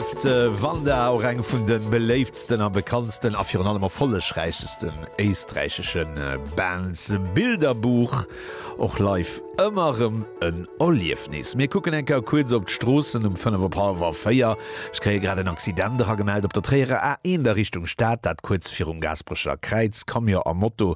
D'Wanda, och eng vun de beléiftsten a bekanntsten a virun allem erfollegräichsten éisträichesche Bands. Bilderbuch, och live ëmmer rëm en Erliefnis. Mir kucken eng Kéier kuerz op d'Stroossen um fënnef op hallwer véier. Ech kréie grad en Accident eragemellt op der Tréierer A1 a Richtung Stad, dat kuerz virum Gaasperecher Kräiz. Camion a Moto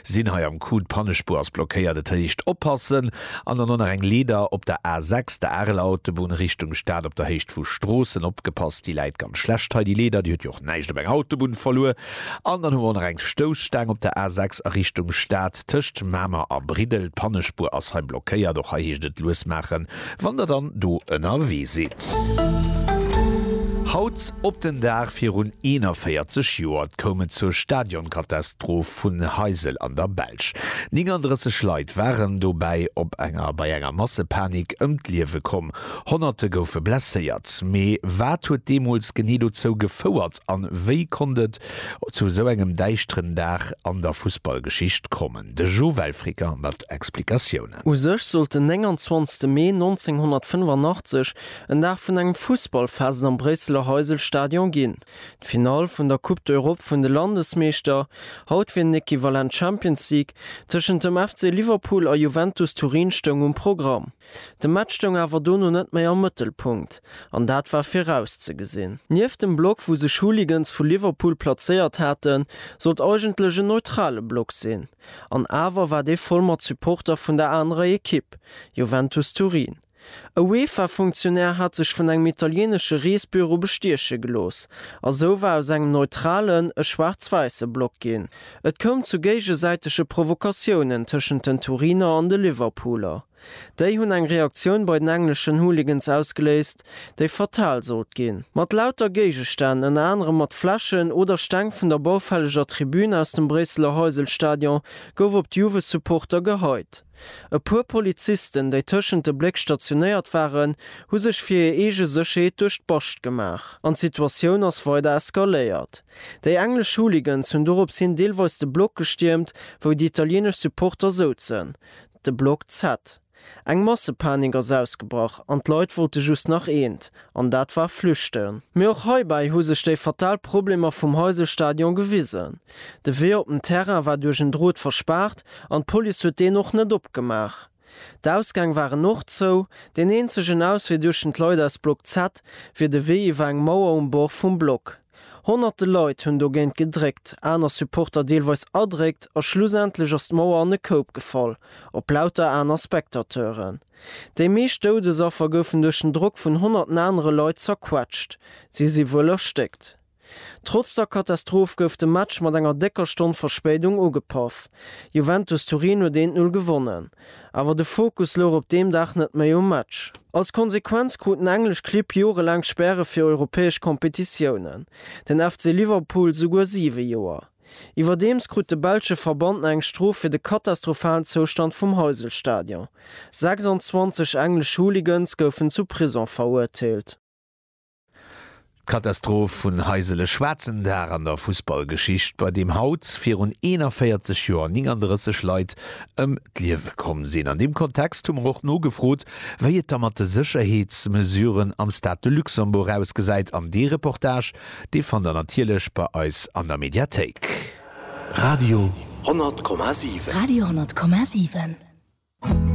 sinn hei am Coup, d'Pannespuer ass blockéiert, et heescht oppassen. An dann och nach eng Leeder op der A 6, der Areler Autobunn, Richtung Stad op der Héicht vu Stroossen. Opgepasst, déi läit ganz schlecht hei, déi Leeder. Déi huet jo och näischt op enger Autobunn verluer. An dann hu mer och nach eng Stousstaang op der A 6 a Richtung Stad tëscht Mamer a Briddel. D'Pannespuer ass hei blockéiert. Och hei heescht et lues maachen, wann Der dann do ënnerwee sidd. Haut op den Dag virun 41 Joer koum et zur Stadionkatastroph. vun Heysel an der Belsch. 39 Leit waren dobäi op enger bei enger Massepanik ëm d'Liewe komm. Honnerte goufe blesséiert. Mee wat huet deemools genee dozou gefouert a wéi konnt et zu esou engem däischteren Dag an der Fussballgeschicht kommen? De Joël Fricker mat Explikatiounen. U sech sollt den 29 Mee 1985 en Dag vun engem Fussballfest am Bréisseler Heysel-Stadion ginn. D'Finall vun der Coupe d'Europe vun de Landesmeeschter, haut wier den Equivalent Champions League, tëschent dem FC Liverpool a Juventus Turin stoung um Programm. De Match stoung awer dono net méi am Mëttelpunkt, an dat war virauszegesinn. Nieft dem Block wou sech Hooligans vu Liverpool plazéiert haten, sollt eigentlech en neutrale Block sinn, an awer war dee voll mat Supporter vun der anerer Ekipp, Juventus Turin. E UEFA-Funktionär hat sech vun engem italienesche Reesbüro bestieche gelooss a sou war aus engem neutralen e schwaarz-wäisse Block ginn. Et koum zu géigesäitege Provokatiounen tëschent den Turiner an de Liverpooler. Déi hunn eng Reaktioun bei den engleschen Hooligans ausgeléist, déi fatal sollt ginn. Mat lauter Géigestänn, ënner anerem mat Fläschen oder Steng vun der baufälleger Tribün aus dem Bréisseler Heysel-Stadion, gouf op d'Juve-Supporter geheit. E puer Polizisten, déi tëschent de Bléck stationéiert waren, hu sech fir hir eege Sécherheet duerch d'Bascht gemaach an d'Situatioun ass weider eskaléiert. Déi englesch Hooligans hunn dorops hin deelweis de Block gestiermt, wou déi italieenesch Supporter souzen, de Block Z. Eng Massepanik ass ausgebrach an d'Leit wollte just nach eent, an dat war flüchten. Mee och heibäi hu sech déi fatal Problemer vum Heysel-Stadion gewisen. De Wee op den Terrain war duerch en Drot verspaart an d'Police huet deen och net opgemaach. D'Ausgäng waren och zou. Deen eenzegen Auswee duechten d'Leit aus Block Z wier de Wee iwwer eng Mauer um Bord vum Block. Honnerte Leit hunn dogéint gedréckt, aner Supporter deelweis erdréckt a schlussendlech ass d'Mauer an e Koup gefall, op lauter aner Spectateuren. Déi meescht Doudesaffer goufen duerch den Drock vun honnerten anere Leit zerquetscht. Si si wuel erstéckt. Trotz der Katastroph gouf de Match mat enger décker Stonn Verspéidung ugepaff. Juventus Turin huet 1, 0 gewonnen. Awer de Fokus louch op deem Dag net méi um Match. Als Konsequenz kruten englesch Clibb jorelaang Späre fir europäesch Kompetitiounen, den FC Liverpool souguer 7 Joer. Iwwerdeems krut de belsche Verband nach eng Strof fir de katastrophalen Zoustand vum Heysel-Stadion. 26 englesch Hooligans goufen zu Prison verurteelt. D'Katastroph vun Heisele Schwaarzen Dag an der Fussballgeschicht, bei deem haut virun 41 Joer 39 Leit ëm d'Liewe komm sinn. An deem Kontext hu mer och nogefrot, wéi et da mat de Sécherheetsmesuren am Stade de Luxembourg ausgesäit. An dee Reportage, dee fannt der natierlech bei eis an der Mediathéik. Radio 100,7. Radio 100,7.